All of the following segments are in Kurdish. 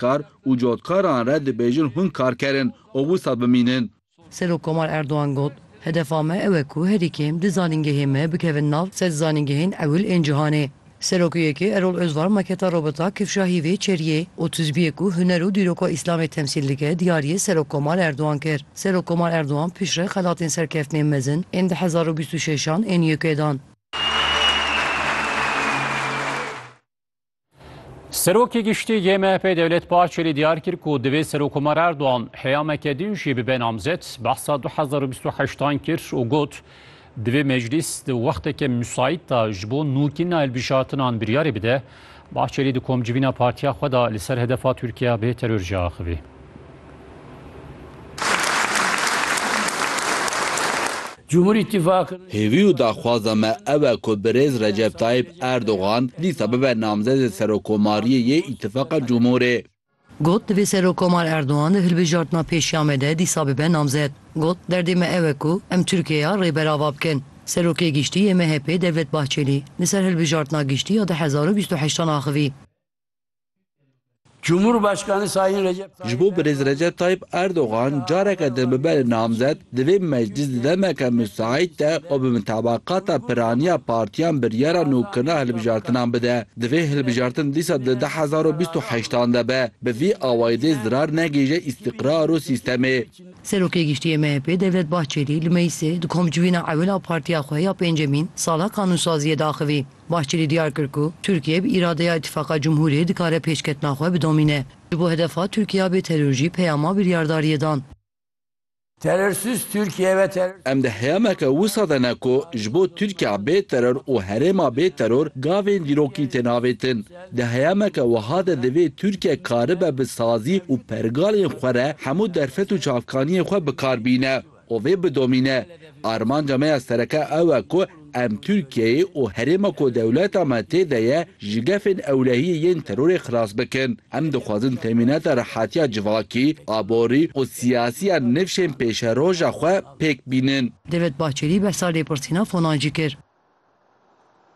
kar û cotkaran re dibêjin hûn kar kerin û wisa bimînin. Serok Komar Erdogan got, Hedefa me ew e ku herî kêm du zanîngehê me bikevin nav sed zanîngehên ewil ên cihanê. Serokê YK Erol Ozvar maketa Robota Kifşahî vê çeriyê û tizbiyê ku huner û dîroka Îslamê temsîl dike diyariyê Serok Komar Erdogan kir. Serok Komar Erdogan piştre xelatên serkeftinên mezin ên du hezar û bîst û şeş an ên YK'ê dan. Serokê giştî yê MHP Dewlet Bahçelî diyar kir ku divê Serokkomar Erdogan heyameke din jî bibe namzet, behsa 2028 kir û got, Divê meclîs di wexteke musayît de ji bo nûkîna hilbijatinan biryarê bide. Bahçelî di komcivîna partiya xwe de li ser hedefa Tirkiye bê teror jî axivî. Hêvî û daxwaza me ew e ku birêz Recep Tayyîp Erdogan dîsa bibe namzedê Serokomariyê yê Îtîfaqa Cumhurê. Got, Divê Serokomar Erdogan di hilbijartina pêşiya me de dîsa bibe namzed. Got, Derdê me ew e ku em Tirkiyeya rê berava bikin. Serokê Giştî yê MHP'ê Devlet Bahçelî li ser hilbijartina giştî ya du hezar û bîst û heştan axivî. Cumhurbaşkanı Sayın Recep Ji bo Birêz Recep Tayyip Erdogan careke din bibe li namzet, divê meclîs di demeke misaîd de û bi mitabakata piraniya partiyan biryara nûkirina hilbijartinan bide. Di vê hilbijartin dîsa di du hezar û bîst û heşt an de be. Bi vî awayî dê zirar negihîje îstîqrar û sîstemê. Serokê Giştî yê MHP'ê Devlet Bahçelî li Meyîsê di komcivîna ewil a partiya xwe ya pêncemîn sala qanûnsaziyê de axivî. Bahçeli diyar kir ku Tirkiye bi îradeya Îtîfaqa Cumhuriyê dikare pêşketina xwe bidomîne. Ji bo hedefa Tirkiya bê teror jî peyama biryardariyê dan. Terörsüz Türkiye ve terör. Em di heyameke wisa de ne ku ji bo Tirkiya bê teror û herêma bê teror gavên dîrokî tên avêtin. Di heyameke wiha de divê Tirkiye karibe bi sazî û pergalên xwe re hemû derfet û çavkaniyên xwe bikar bîne. Û vê bidomîne. Armanca me ya sereke ew e ku em Tirkiyeyê û herêma ku dewleta me tê de ye ji gefên ewlehiyê yên terorê xilas bikin. Em dixwazin temînata rehatiya civakî, aborî û siyasî ya nifşên pêşeroja xwe pêk bînin. David Bahçelî behsa lêpirsîna Fonan jî kir.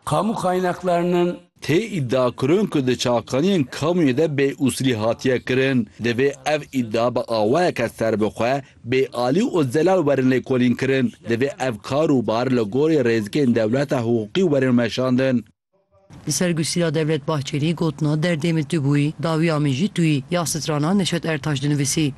Kamu kaynaklarının. Tê îdiakirin ku di çakaniyên kamuyê de bêusûlî hatiye kirin. Divê ev îdia bi awayeke serbixwe bê alî û zelal werin lêkolînkirin. Divê ev kar û bar li gorî rêzikên dewleta hiqûqî werin weşandin. Li ser Gusîra Devlet Bahçelî gotina derdê min tu bûyî, dawiya min jî tu yî ya strana Neşet Ertaş dinivîsî.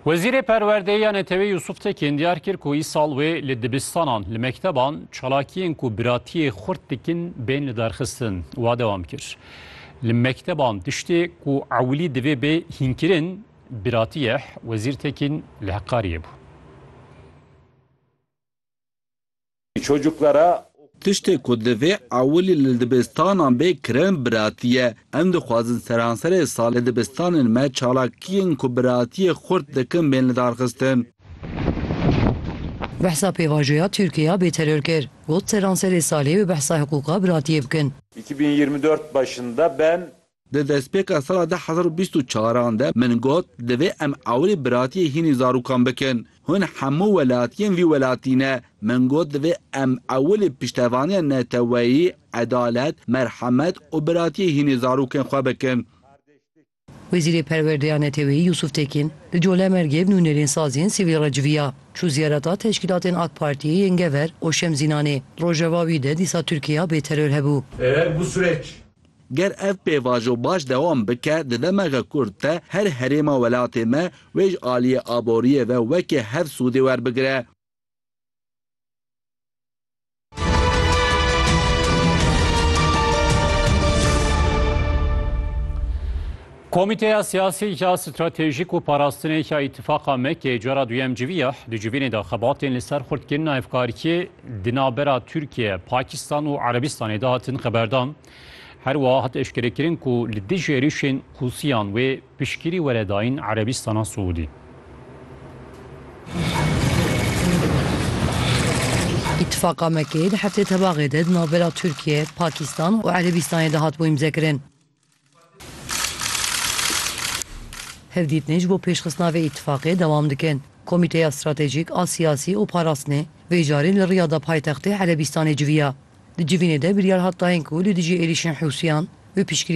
Wezîrê Perwerdeyê ya Netewê Yusuf Tekîn diyar kir ku îsal wê li dibistanan, li mekteban çalakiyên ku biratiyê xurt dikin bên lidarxistin. Wa dewam kir. Li mekteban tiştê ku ewilî divê bê hînkirin biratî ye, Wezîr Tekîn li Heqariyê bû. Tiştê ku divê ewilî li dibistanan bê kirin biratî ye. Em dixwazin seranserê salê dibistanên me çalakiyên ku biratiyê xurt dikin bên lidarxistin. Behsa pêvajoya Tirkiya bê teror kir, got seranserê salê bi behsa hiqûqa biratiyê bikin. Di destpêka sala du hezar û bîst û çar an de min got divê em awirî biratiyê hînî zarokan bikin. Hûn hemû welatiyên vî welatî ne. Min got divê em ewilî piştevaniya neteweyî, edalet, merhemet û biratiyê hînî zarokên xwe bikin. Wezîrê Perwerdeya Neteweyî Yûsûf Tekîn li Colemêrgê bi nûnerên sazî yên sivîl re civiya. Çû ziyareta teşkîlatên AK Partiyê yên Gever û Şemzînanê. Li Rojava wî de dîsa Tirkiye ya bêteror hebû. Ger ev pêvajo baş dewam bike di demege kurt de her herêma welatê me wê ji aliyê aboriyê ve weke hev sûdê werbigire. Komîteya Siyasî ya Stratejîk û Parastinê ya Îtîfaqa MEK'ê cara duyem civî ya di civînê de xebatên li ser xurtkirina hevkariyê di navbera Tirkiye, Pakistan û Erebistanê de hatin xeberdan. Her wiha hat eşkerekirin ku li dijî êrîşên Hûsiyan wê piştgirî were dayîn Erebistana Siûdî. Îtîfaqa MEK'ê di heftê tebaxê de di navbera Tirkiye, Pakistan û Erebistanê de hat bo îmzekirin. Hevdîtinên ji bo pêşxistina vê îtîfaqê dewam dikin. Komîteya Stratejîk a Siyasî û Parastinê vê carî li Riyada paytextê Erebîstanê civiya. Di civînê de biryar hat dayên ku li dijî êrîşên Hûsiyan bi piştgiriya